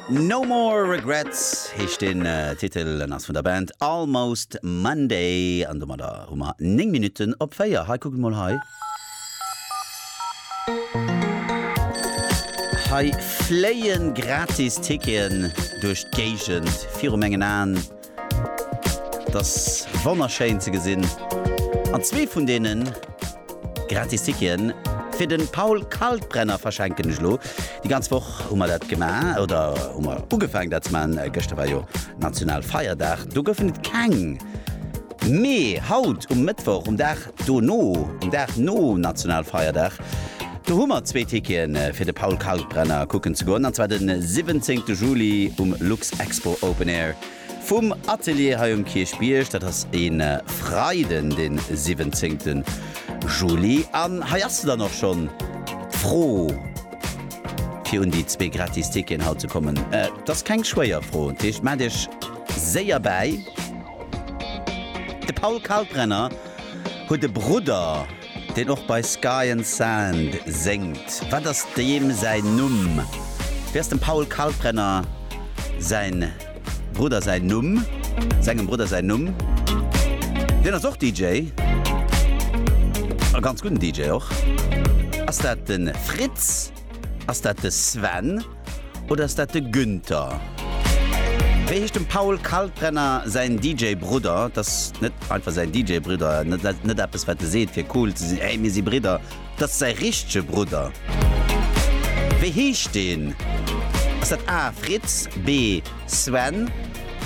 No More Regrets heescht den Titel an ass vun der Band Almost Monday. An domadder hu mer 9 Minutten op 4. Hei, kuckt mol hei. Hei fléien gratis Ticketen duerch d'Géigend viru mengen Aen. Et ass wonnerschéin ze gesinn an zwee vun deene gratis Ticketen fir de Paul Kalkbrenner verschenken ech elo. Déi ganz Woch hu mer dat gemaach oder hu mer ugefaangen dat ze maachen. Gëschter war jo Nationalfeierdag, do goufen et keng, mee haut um Mëttwoch, um Dag Dono, den Dag nom Nationalfeierdag, do hu mer zwee Ticketen fir de Paul Kalkbrenner kucken ze goen, an zwar den 17 Juli um Luxexpo Open Air vum Atelier hei um Kierchbierg. Dat ass e Freiden, den 17 Juli. An hei ass se dann och schonn, d'Fro fir un déi zwee gratis Ticketen haut ze kommen. Et ass keng schwéier Fro, dat heescht, maacht Iech séier bäi. De Paul Kalkbrenner huet e Brudder, deen och bei Sky and Sand séngt. Wat ass deem säin Numm? Wéi ass dem Paul Kalkbrenner säi Brudder säin Numm? Sengem Brudder säin Numm? Deen ass och DJ, e ganz gudden DJ och. Ass dat de Fritz? Ass dat de Sven? Oder ass dat de Günther? Wéi heescht dem Paul Kalkbrenner säin DJ-Brudder? Dat ass net einfach säin DJ-Brudder, net eppes, wat e seet, fir cool ze sinn, Hey, mir si Bridder! Dat ass säi richtege Brudder. Wéi heescht deen? Ass dat A, Fritz, B, Sven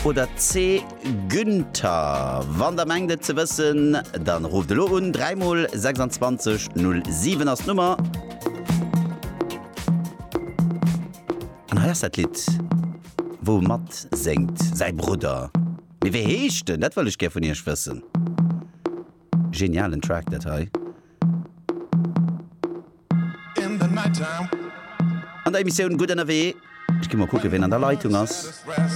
oder C, Günther, Wann der mengt et ze wëssen, dann rufft elo un, 3 mol 26 07 ass d'Nummer. An hei ass dat Lidd wou e mat séngt, säi Brudder, mee wéi heescht en? Dat wëll ech gär vun iech wëssen. Genialen Track dat hei. An der Emissioun Gutt ënnerwee. Ech gi mol kucke ween an der Leitung ass.